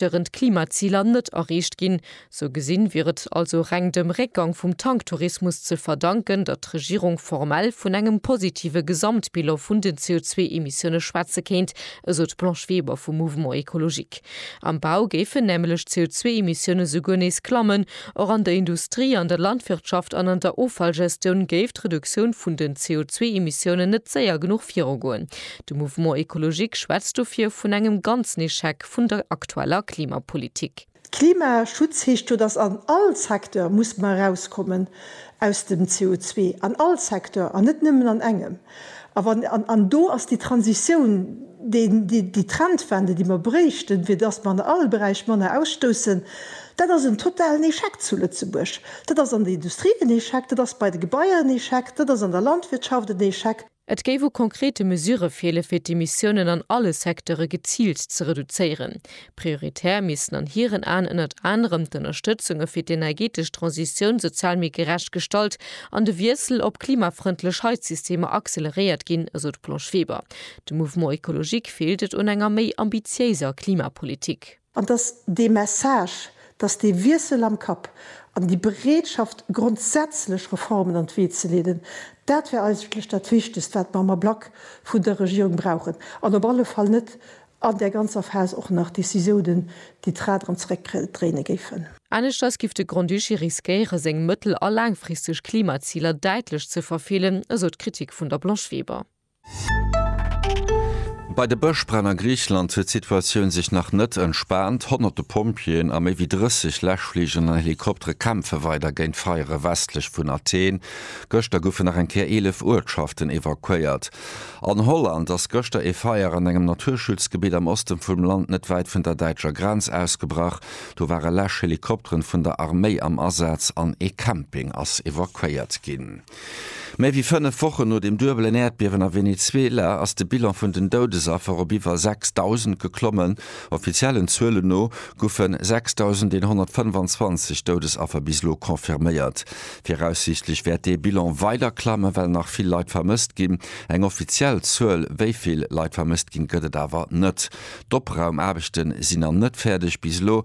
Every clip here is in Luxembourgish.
deren d'Klimaziler net erreecht ginn. Sou gesinn wier et also reng dem Réckgang vum Tanktourismus ze verdanken, datt d'Regierung formell vun engem positive Gesamtbilan vun den CO2-Emissioune schwätze kéint, esou d'Blanche Weber vum Mouvement écologique. Am Bau géifen nämlech d'CO2-Emissioune souguer nees klammen. Och an der Industrie, an der Landwirtschaft an an der Offallgestioun géif d'Reduktioun vun den CO2-Emissioune net séier genuch virugoen. De Mouvement Ecologique schwätzt dofir vun engem ganzen Echec vun der aktueller Klimapolitik. Klimaschutz heescht jo, datt an all Secteur muss mer erauskommen aus dem CO2, an all Secteur an net nëmmen an engem. A wann, an do ass déi Transitioun déi Trendwende déi mer bréichten, fir datt mer an all Beräich manner ausstoussen, dat ass en totalen Echec zu Lëtzebuerg. Dat ass an der Industrie en Echec, dat ass bei de Gebaier en Echec, dat ass an der Landwirtschaft en Echec. Et géif u konkrete Mesurë feele fir d'Emissiounen an alle Secteure geziilt ze reduzéieren. Prioritär missten an hiren Aen ënnert anerem d'Ënnerstëtzunge fir d'energeetesch Transitioun sozial méi gerecht gestalt an de Wiessel op klimafrëndlech Heizsystemer acceleréiert ginn, esou d'Blanche Weber. Dem Mouvement écologique feelt et un enger méi ambitiéiser Klimapolitik. An dass dee Message, dass dee Wiessel am Kapp an déi Bereetschaft, grondsätzlech Reformen an d'Wee ze leeden, dat wär eigentlech dat Wichtegst, wat mer am Ablack vun der Regierung brauchen, an op alle Fall net an där ganzer Phas och nach Décisiounen, déi d'Rad erëm zeréckdréine géifen. Aneschters giff de Grand-Duché riskéiere seng mëttel a laangfristeg Klimaziler däitlech ze verfeelen, esou d'Kritik vun der Blanche Weber. Bei de Bëschbränn a Griicheland huet d'Situatioun sech nach net entspaant. Honnerte Pompjeeën a méi wéi 30 Läschfligeren an Helikoptere kämpfe weider géint d'Feiere westlech vun Athen. Gëschter goufen nach eng Kéier 11 Uertschaften evakuéiert. An Holland ass gëschter ee Feier an engem Naturschutzgebitt am Oste vum Land net wäit vun der däitscher Grenz ausgebrach. Do ware Läschhelikopteren vun der Arméi am Asaz an ee Camping ass evakuéiert ginn. Méi wéi fënnef Wochen no dem duebelen Äerdbiewen a Venezuela ass de Bilan vun den Doudesaffer op iwwer 6.000 geklommen. Offiziellen Zuelen no goufe 6.125 Doudesaffer bis elo confirméiert. Viraussiichtlech wäert dee Bilan weider klammen, well nach vill Leit vermësst ginn. Eng offiziell Zuel, wéi vill Leit vermësst ginn, gëtt et awer net. D'Opraumaarbechte sinn nach net fäerdeg. Bis elo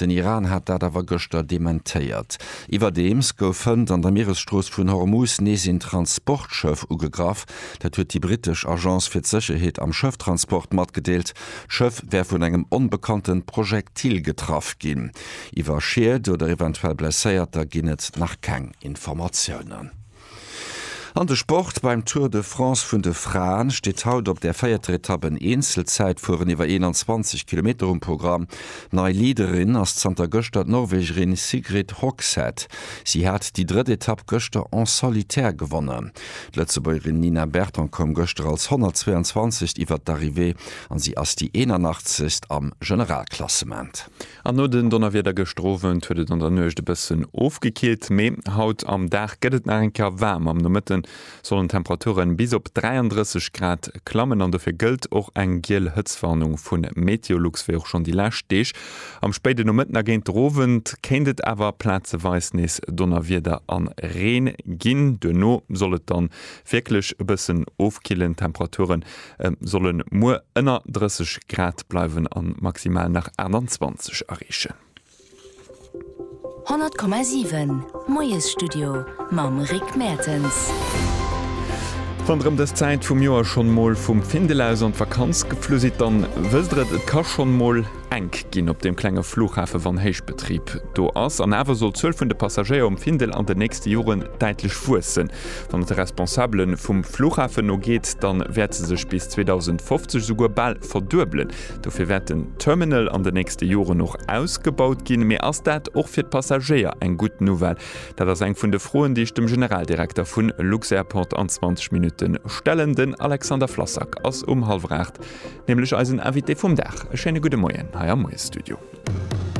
Den Iran hat dat awer gëschter dementéiert. Iwwerdeems gouf hënt an der Mieresstrooss vun Hormus nees een Transportschëff ugegraff. Dat huet déi brittesch Agence fir d'Sécherheet am Schëfftransport matgedeelt. D'Schëff wär vun engem onbekannte Projektil getraff ginn. Iwwer Schied oder eventuell Blesséierter ginn et nach keng Informatiounen. An de Sport, Beim Tour de France vun de Fraen steet haut op der véierter Etapp en Eenzelzäitfueren iwwer 21 Kilometer um Programm. Nei Leaderin ass zanter gëschter d'Norwegerin Sigrid Hogshead. Si hat déi drëtt Etapp gëschter en solitaire gewonnen. D'Lëtzebuergerin Nina Berton koum gëschter als 122. iwwert d'Arrivée an si ass déi 81. am Generalklassement. An no den Donnerwieder gëschter Owend huet et an der Nuecht e bëssen ofgekillt, mee haut am Dag gëtt et nach eng Kéier waarm. Am Nomëtte sollen d'Temperature bis op 33 Grad klammen an dofir gëllt och eng giel Hëtztwarnung vu Meteolux, wéi och schonn déi lescht Deeg. Am spéiden Nomëtten a géint de Owend kéint et awer plazeweis nees Donnerwieder a Reen ginn. Duerno soll et dann wierklech e bëssen ofkillen, d'Temperature solle muer ënner 30 Grad bleiwen a maximal nach 28 areechen. 100,7 Moiesstudio mam Rick Mertens. Wann der ëm dës Zäit vum Joer schonn mol vum Findel aus an d'Vakanz geflu sidd, dann wësst der et, et ka schonn mol. Enk ginn op deem klenge Flughafe wann Héichbetrib do ass. An awer soll d'Zuel vun de Passagéier um Findel an den nächste Joren däitlech wuessen. Wann et de Responsabele vum Flughafen no geet, da wäert se sech bis 2050 esouguer bal verduebelen. Dofir wäert den Terminal an den nächste Joren och ausgebaut ginn. Mee ass dat och fir d'Passagéier eng gutt Nouvelle? Dat ass eng vun de Froen, déi ech dem Generaldirekter vu Lux-Airport an 20 Minutte stellen. Den Alexander Flassak ass um hallwer 8 Nämlech eisen Invité vum Dag. E schéine gudde Moien hei am Moiesstudio.